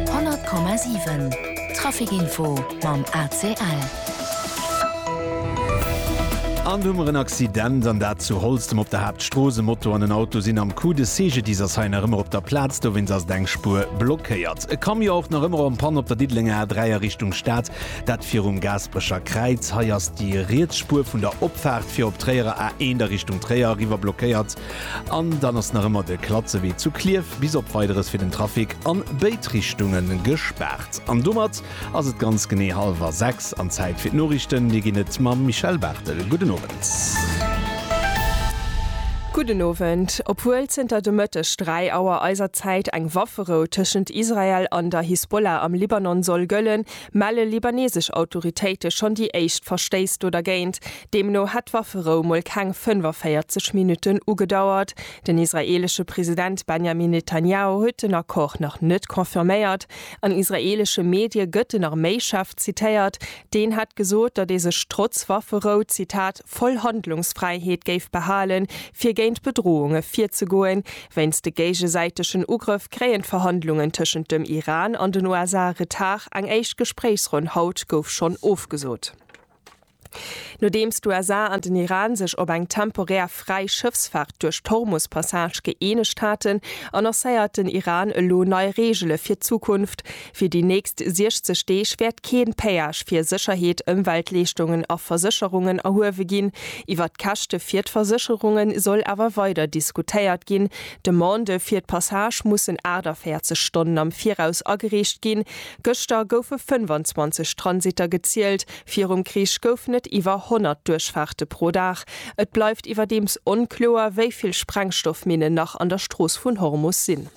100,7 Trafic Info mam ACL. An do hu mer en Accident, an dat zu Holztem op der Haaptstrooss. E Moto an en Auto sinn am Coup. De CGDIS ass hei nach ëmmer op der Plaz, dowéinst ass et eng Spuer blockéiert. E Camion och nach ëmmer en Panne op der Diddelenger A3 a Richtung Stad, dat virum Gaasperecher Kräiz. Hei ass déi riets Spuer vun der Opfaart fir op Tréierer A1 a Richtung Tréier eriwwer blockéiert. An dann ass nach ëmmer de Klatzewee zu Klierf bis op Weideres fir den Trafic an béid Richtunge gespaart. An domat ass et ganz genee hallwer 6 an Zäit fir d'Noriichten. Dir ginn et mam Michèle Barthel. Gudden Owend. Gudden Owend. Obwuel zënter de Mëtteg 3 Auer eiser Zäit eng Wafferou tëschent Israel an der Hisbollah am Libanon soll gëllen, melle libanesesch Autoritéite schonn déi éischt Verstéiss do dergéint. Deemno hätt d'Wafferou mol keng 45 Minutten ugedauert. Den israeelesche President Benjamin Netanjahu huet den Accord nach net confirméiert. An israeelesche Medie gëtt den Arméichef zitéiert, deen hätt gesot, datt ee sech trotz Wafferou, Zitat, voll Handlungsfräiheet géif behalen, fir géint Bedrohunge virzegoen. Wéinst de géigesäitegen Ugrëff kréien d'Verhandlungen tëschent dem Iran an den USA Retard, eng éischt Gespréichsronn haut gouf schonn ofgesot. Nodeems d'USA an den Iran sech op eng temporär fräi Schëffsfaart duerch d'Hormus-Passage gëeenegt haten, annoncéiert den Iran elo nei Reegele fir d'Zukunft, Fir déi nächst 60 Deeg wäert kee Péage fir Sécherheet, Ëmweltleeschtungen a Versécherungen erhuewe ginn. Iwwert d'Käschte fir d'Versécherunge soll awer weider diskutéiert ginn. D'Demandë fir d'Passage mussen 48 Stonnen am Viraus agereecht ginn. Gëschter goufe 25 Transitter gezielt, virum Krich goufen et iwwer 100 Duerchfaarte pro Dag. Et bleift iwwerdeems onkloer, wéi vill Sprengstoffminnen nach an der Strooss vun Hormus sinn.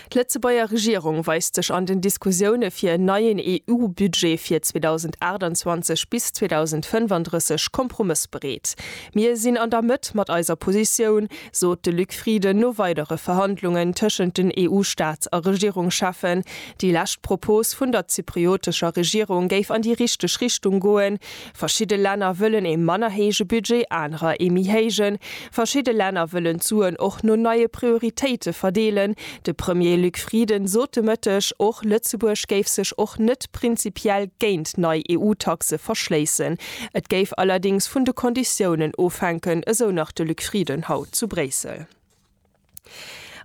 D'Lëtzebuerger Regierung weist sech an den Diskussioune fir en neien EU-Budget fir 2028 bis 2035 kompromëssbereet. Mir sinn an der Mëtt mat eiser Positioun, sot de Luc Frieden no weidere Verhandlungen tëschent den EU-Staats a Regierungscheffen. Déi lescht Propos vun der zypriotescher Regierung géif an déi richteg Richtung goen. Verschidde Länner wëllen ee manner héije Budget, anerer ee méi héijen. Verschidde Länner wëllen d'Suen och no neie Prioritéite verdeelen. De Premier Luc Frieden sot de Mëtteg och, Lëtzebuerg géif sech och net prinzipiell géint nei EU-Taxe verschléissen. Et géif allerdéngs vun de Konditiounen ofhänken, esou nach de Luc Frieden haut zu Bréissel.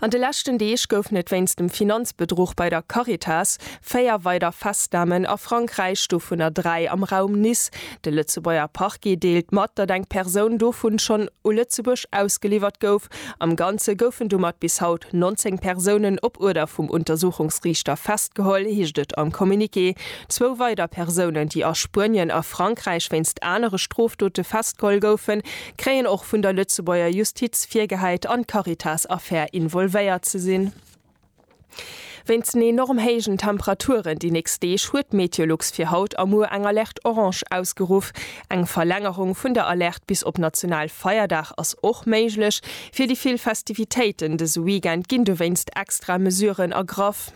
An de leschten Deeg goufen et wéinst dem Finanzbedruch bei der Caritas véier weider Festnamen a Frankräich, dovunner dräi am Raum Nice. De Lëtzebuerger Parquet deelt mat, datt eng Persoun dovun schonn u Lëtzebuerg ausgeliwwert gouf. Am Ganze goufen domat bis haut 19 Persounen op Uerder vum Untersuchungsriichter festgeholl, heescht et am Communiqué. Zwou weider Persounen, déi a Spuenien a Frankräich wéinst anere Strofdote festgeholl goufen, kréien och vun der Lëtzebuerger Justiz virgehäit, an d'Caritas-Affär involvéiert ze sinn. Wéinst den enorm héijen Temperaturen déi nächst Deeg huet d'Meteolux fir haut a muer eng Alerte orange ausgeruff. Eng Verlängerung vun der Alerte bis op Nationalfeierdag ass och méiglech. Fir déi vill Festivitéiten dëse Weekend ginn dowéinst extra Mesuren ergraff.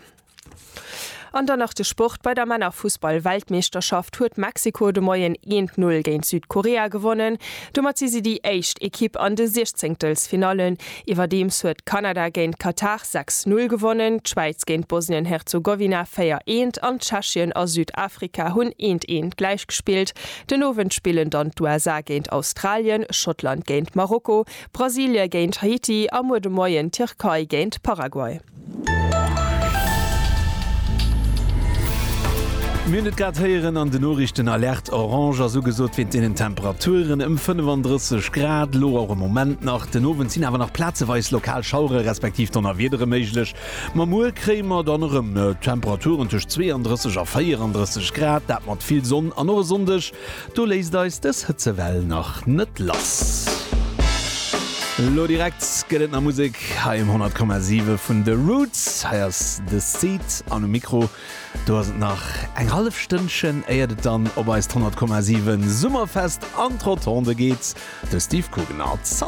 An dann nach de Sport, Bei der Männerfussball-Weltmeeschterschaft huet Mexiko de Moien een t Null géint Südkorea gewonnen. Domat si si déi éischt Ekipp an de Siechzéngtelsfinallen. Iwwerdeems huet Kanada géint Katar sechs Null gewonnen, d'Schwäiz géint Bosnien-Herzogowina véier eent an Tschechien a Südafrika hunn eent eent gläich gespillt. Den Owend spillen dann d'USA géint Australien, Schottland géint Marokko, Brasilie géint Haiti a muer de Moien d'Tierkei géint Paraguay. Mir hunn et grad héieren an den Noriichten, Alerte orange ass ugesot wéint deenen Temperaturen ëm 35 Grad. Elo och e Moment nach. Den Owend sinn awer nach plazeweis lokal Schauere respektiv Donnerwiedere méiglech. Ma muer kréie mer dann erëm Temperaturen tëscht 32 a 34 Grad, dat mat vill Sonn an och e Sonndeg Do léisst eis dës Hëtzewell nach net lass. Lo direkt gëtt et nach Musek hei um 100,7 vun The Roots. Hei ass The Seed an um Mikro do ass et nach eng hallef Stënnchen éiert et dann op eist 100,7 Summerfest an d'Rotonde geet. De Steve Guggenard. Salut!